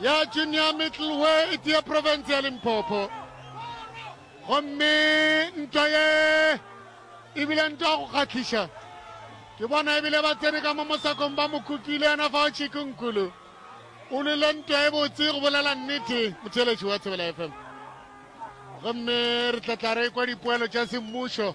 ya Junior Middle we e tee profense ya Limpopo. Gomme ntwa ye e bile ntwa ya go kgahliša. Ke bona e bile ba tsene ka mo mosakong ba mo kukile yena fa o Chiku Nkulu. O lwile ntwa e botse go bolela nnete motheeletši wa Thobela FM. Gomme re tla tla re kwa dipoelo tša semmušo.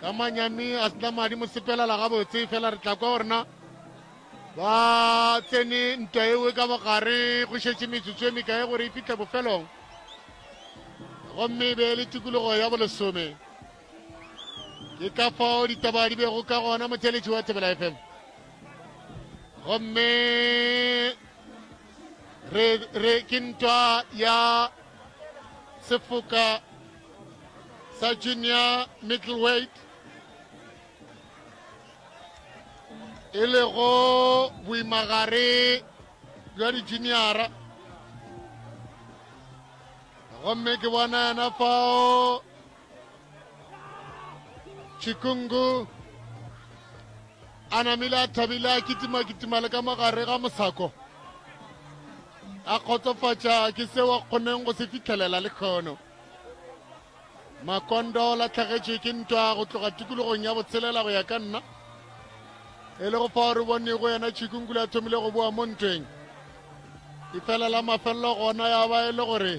ka manyami a sena madi mo sepelela gabotse fela re tla kwa gore na ba tsene ntwa ewe ka bogare go šetše metsotso e mekae gore e fitlhe bofelong gomme e be le tikologo ya bolesome ke ka fao ditaba di bego ka gona motheletši wa thebela fm gomme re ke ntwa ya sefoka sa junior middleweight e lego boimagare bja dijuniara gomme ke bona yena fao chikungu a namile a thabile a kitimakitima le ka mogare ga mosako a kgotsofatša ke seo a kgoneng go se fitlhelela le kgono Makondo la tlhagetše ke ntwa go tloga tikologong ya botshelela go ya ka nna e le go fa gore bone go yena tšhikungkule a thomile go boa mo ntweng e fela la mafelelo gona ya ba e le gore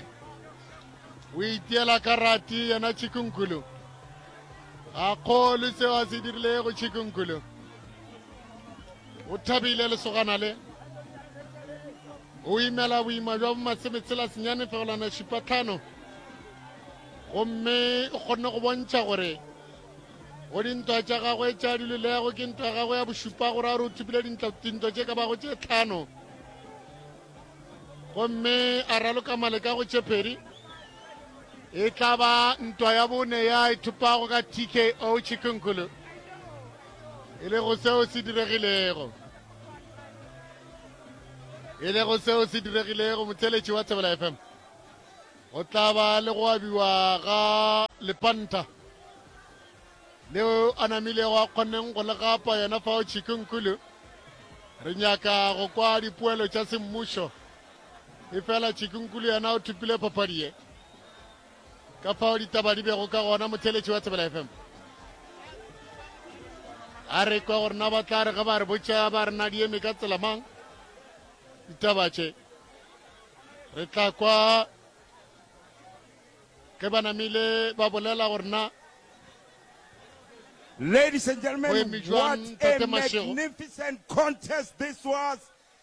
o itiela karati yena tšhikungkulu ga kgolwe seo a se dirile go tšhikungkulu o thabile lesogana le Go imela boima bja bomatshebetshela senyane fegelwana šipa tlhano gomme o kgonne go bontšha gore go dintwa tša gagwe tša dilelego ke ntwa ya gagwe ya bošupa gore a re o thopile dintwa tše ka bago tše tlhano gomme a raloka maleka go tšephedi e tla ba ntwa ya bone ya e thopago ka tko chikunkhulu e le go seo se diregilego e lego seo se diregilego motheletši wa Thobela FM go tla ba le go abiwa ga lepanta leo a namilego a kgonneng go le gapa yona fao Chikunkulu re nyaka go kwa dipoelo tša semmušo efela Chikunkulu yena o thopile papadi ye ka fao ditaba di bego ka gona motheletši wa thebela fm a re kwa gore na ba tla re ge ba re botša ba re na di eme ka tsela mang ditaba tše re tla kwa ge ba namile ba bolela gore na Ladies and gentlemen, what a magnificent contest this was.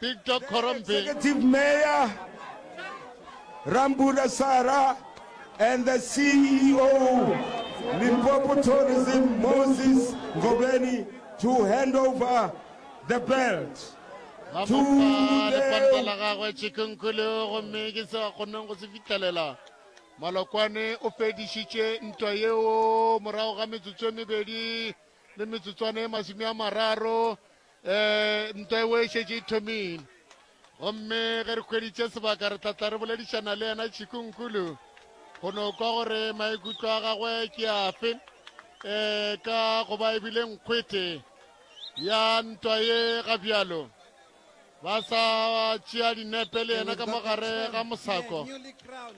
Victor Khorombe. Executive Mayor Rambuda Sara and the CEO Limpopo Tourism Moses Ngobeni to hand over the belt to the la gagwe Chikunkulu gomme ke sa kgoneng go se fitlelela Malokwane o fedišitše ntwa yeo morago ga metsotso e mebedi le metsotswana e masome a mararo Ee, ntwa eo e šetše e thomile. Gomme ge re hweditše sebaka re tlatla re boledišana le yena Chikunkulu go no kwa gore maikutlo a gagwe ke afe um ka go ba ebile nkgwete ya ntwa ye ga bjalo ba sa tšea dinepe le yena ka mogare ga mosako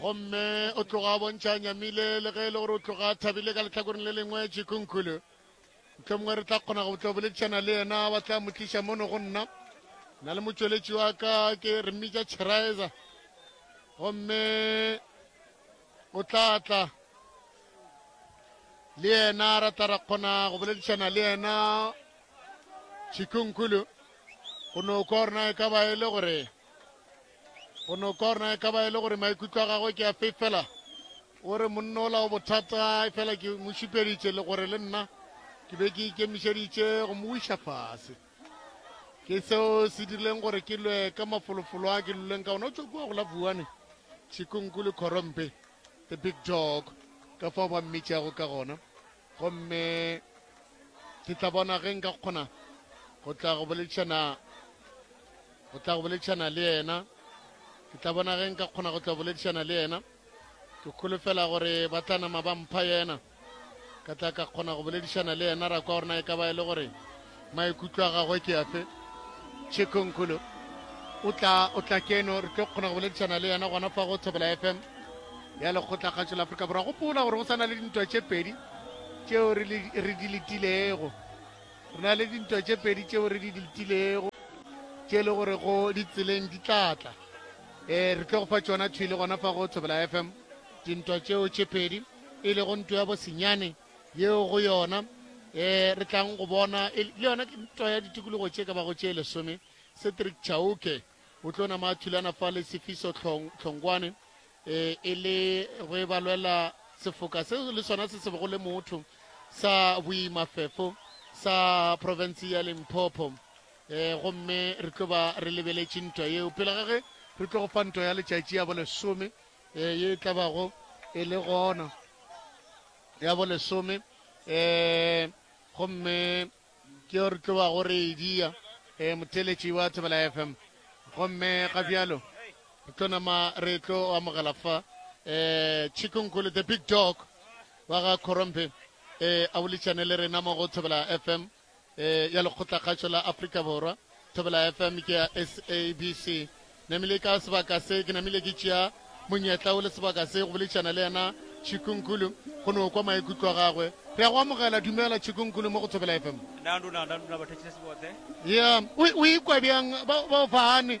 gomme o tloga a bontšha a nyamile le ge e le gore o tloga a thabile ka letlhakoreng le lengwe jikunkhulu motlho mongwe re tla kgona go tlo boledišana le yena ba tla mo tliša mono go nna na le motšweletši wa ka ke re mmitša cherizer gomme o tla tla le yena ra tla ra kgona go boledišana le yena jikunkhulu go no kwa rona e ka ba e le gore Go no korna e ka ba e le gore maikutlo a gagwe ke a fefela. O re, Monna ola o bothata, efela ke mo šupeditše le gore le nna ke be ke ikemišeditše go mo wiša fase. Ke seo se dirileng gore ke lwe ka mafolofolo a ke luleng ka ona. O tšwa kua go la Vuane, Chikunku le Khorompe, the big dog, ka fao ba mmitšago ka gona. Gomme ke tla bona ge nka kgona go tla go boledišana go tla go boledišana le yena ke tla bona ge nka kgona go tla boledišana le yena ke kholofela gore ba tla nama ba mpha yena ka tla ka kgona go boledišana le yena ra kwa gore na e ka ba e le gore maikutlo a gagwe ke afe tšhekhonkgolo o tla o tla keno re tlo kgona go boledišana le yena gona fa go thobela fm ya lekgotla kgatšo la aforika borwa gopola gore go sa na le dintwa tše pedi tšeo re di letilego re na le dintwa tše pedi tšeo re di letilego tše e le gore go ditseleng di tlatla um eh, re tlo go fa tšona thwi le gona fa go thobela fm dintwa tšeo tše pedi e lego ntwa ya bosenyane yeo go yona um re tlang go bona e le yona ke ntwa ya ditikologo tše ka bago tše lesome cedric chauke o tlo nama a thulana fa le sefiso tlhongwane um e le go e balwela sefoka se le sona se se bego le motho sa boimafefo sa province ya limpopo um gomme re tlo ba re lebeletše ntwa yeo pele ga ge re tlo go fa ntwa ya letšatši ya bolesome Ee, ye e tla bago e le gona ya bolesome. Um gomme ke yo re tlo bago re e dia um motheletši wa Thobela FM. Gomme ga bjalo re tlo nama re tlo amogela fa um Chikunkulu the big dog wa ga Khorompe um a boledišane le rena mo go Thobela FM. e ya lekgotlakgatšo la Afrika Borwa. Thobela FM ke ya SABC. Namile ka sebaka se ke namile ke tšea monyetla o le sebaka se go boledišana le yena Chikunkulu go no kwa maikutlo a gagwe. Re ya go amogela dumela Chikunkulu mo go Thobela FM. Nanduna, nanduna bathetšile sebotse. Yeah, o ikwa bjang ba o fane?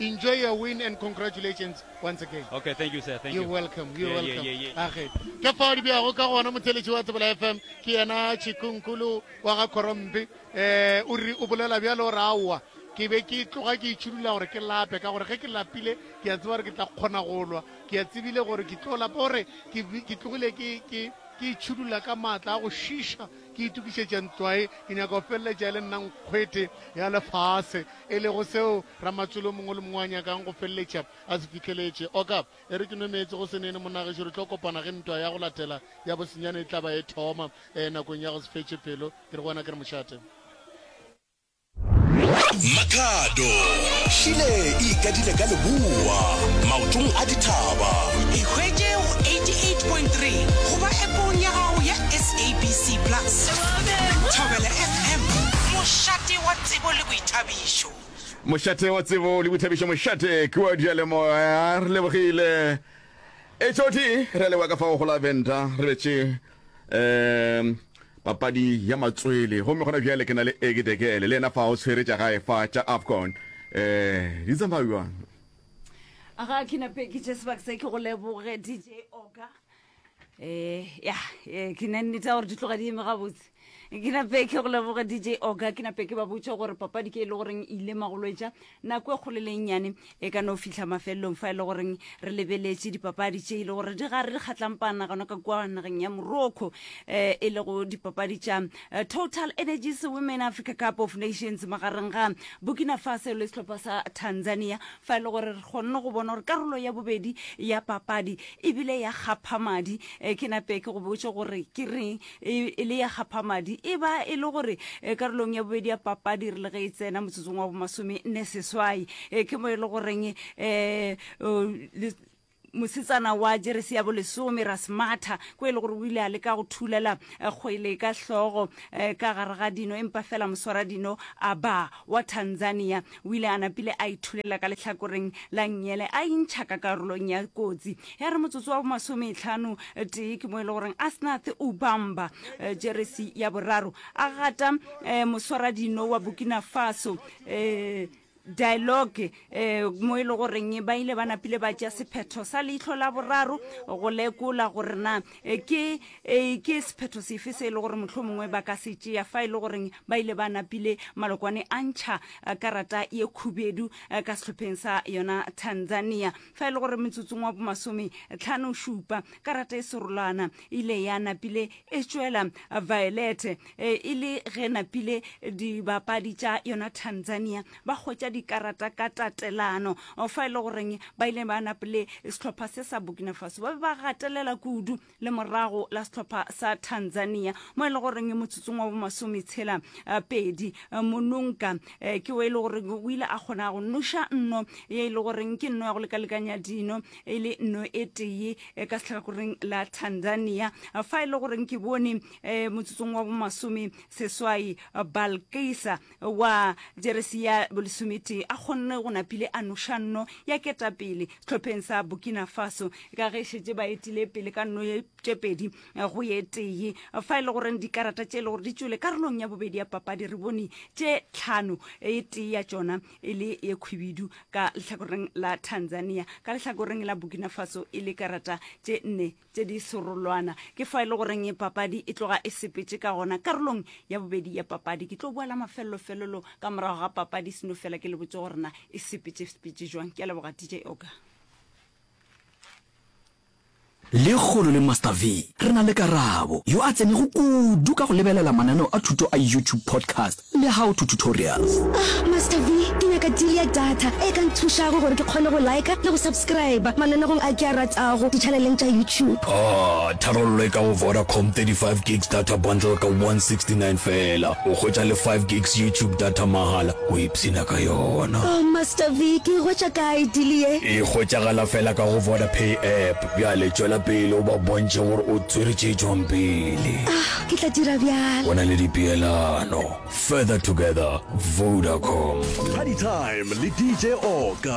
Enjoy your win and congratulations once again. Okay, thank you sir. Thank you. You're welcome. You're yeah, welcome. Yeah, yeah, yeah. Age. Ke fa di bja go ka gona motheletši wa Tsebela FM ke yena Chikunkulu wa ga Korompi. Eh o re o bolela bjalo o ra wa. Ke be ke tloga ke itšhudula gore ke lape ka gore ge ke lapile ke a tseba gore ke tla kgona go lwa. Ke a tsebile gore ke tlo lapa gore ke ke tlogile ke ke ke itšhudula ka maatla a go šiša ke itukišetša ntlwae ke nyaka go feleletša e le nna nkgwete ya lefase e lego seo Ramatswele o mongwe le mongwe a nyakang go feleletša a se fihleletše. Oka, e re ke nwe meetse go se nene, monna gešo, re tlo kopana ge ntwa ya go latela ya Bosenyane e tla ba e thoma, ee, nakong ya go se fetše pelo, ke re go wena ke re mošate. Makhado, Šile e ikadile ka leboa, maotong a dithaba. Ikhwetše go 88.3 goba App-ong ya gago ya SABC Plus. Thobela FM, mošate wa. Tsebo le Boithabišo. Mošate wa Tsebo le Boithabišo Mošate ke wa diyalemoya. Re lebogile. E tšothi re a leboga ka fao go la Venda re betše um papadi ya matswele gomme gona bjale ke na le Egi Dekele le yena fa o tshwere tša gae fa tša AFCON um di tsamaya bjang? Aga ke nape ke tše sebaka se ke go leboge DJ Oga. eh ya eh, ke na nnete ya gore di tloga di eme gabotse ke nape ke go leboga dj oga ke nape ke ba botša gore papadi ke e le goreng e ile magolwetša nako e kgolo le e nnyane e ka no fitlha mafelelong fa e le goreng re lebeletše dipapadi tše e le gore di gare di kgatlang panagano ka kua nageng ya morocco um e lego dipapadi tša eh, total energies women africa cup of nations magareng ga burkina faso le sehlopha sa tanzania Fa e le gore re kgonne go bona gore karolo ya bobedi ya papadi e bile ya kgaphamadi, eh, ke nape ke go botše gore ke reng e, e le ya kgaphamadi. E ba e le gore eh, karolong ya bobedi ya papadi re le ge e tsena motsotsong wa bomasome-nne-seswai, eh, ke mo e le goreng eh, oh, le, mosetsana wa jeresi ya bolesome ra se matha ko e le gore o ile a leka go thulela eh, kgwele ka hlogo eh, ka gare ga dino empa fela moswara dino a ba wa tanzania o ile a napile a ithulela ka lehlakoreng la nnyele a intšha ka karolong ya kotsi ya re motsotso wa bomasometlhano eh, tee ke mo e le goreng asnath ubamba eh, jeresi ya boraro a gata eh, moswara dino wa burkina faso eh, dialogue um mo e le goreng ba ile ba napile ba tšea sephetho sa leitlho la boraro go lekola gore na eh, ke eh, ke sephetho sefe se e le gore motlho mongwe ba ka se tšea fa e le goreng ba ile ba napile malokwane a ntšha eh, karata ye khubedu eh, ka sehlopheng sa yona tanzania Fa e le gore metsotsong wa bomasome tlhano šupa karata e serolwana e ile ya napile e tšwela Violet e e le ge napile dibapadi tša yona Tanzania ba hwetša dikarata ka tatelano fa e le goreng ba ile ba napile sehlopha se sa Burkina Faso ba be ba gatelela kudu le morago la sehlopha sa tanzania mo e le goreng motsotsong wa bomasome tshela eh, pedi eh, mononka eh, ke o e le goreng o ile a kgona go noša nno ye e le goreng ke nno ya go lekalekanya dino e le nno e tee ka setlhakoreng la tanzania fa e le goreng ke bone um motsotsong wa bomasome seswai balkisa wa jeresi ya bolesometee a kgonne go napile a noša nno ya ketapele sehlopheng sa Burkina Faso ka ge šetše ba etile pele ka nno tše pedi go ye tee fa e le goreng dikarata tše e le gore di tšwele karolong ya bobedi ya papadi re bone tše tlhano e tee ya tšona e le ye khwibidu ka lehlakoreng la Tanzania ka lehlakoreng la Burkina Faso e le karata tše nne tše di serolwana. Ke fa e le goreng e papadi e tloga e sepetše ka gona. Karolong ya bobedi ya papadi ke tlo boela mafelelo-felelo ka morago ga papadi seno fela ke le botse gore na e sepetše-sepetše jwang. Ke a leboga DJ Oka. Lekgolo le Master V, re na le Karabo, yo a tsenego kudu ka go lebelela mananeo a thuto a YouTube podcast. Le how to tutorials. Ah Master V, ke nyaka deal ya data e ka nthušago gore ke kgone go liker le go subscriber mananegong a ke a ratago di-channeleng tša YouTube. Aah, tharollo e ka go Vodacom, 35 gigs data bundle ka 169 feela, o hwetša le 5 gigs YouTube data mahala, o ipshina ka yona. Oh Master V, ke e hwetša kae deal ye? E hwetšagala feela ka go Vodapay app. Bjale tšwela pele o ba bontšhe gore o tswere tše tšwang pele. Ah, ke tla dira bjalo. Go na le dipeelano. Further together, Vodacom. Party Time le DJ Oka.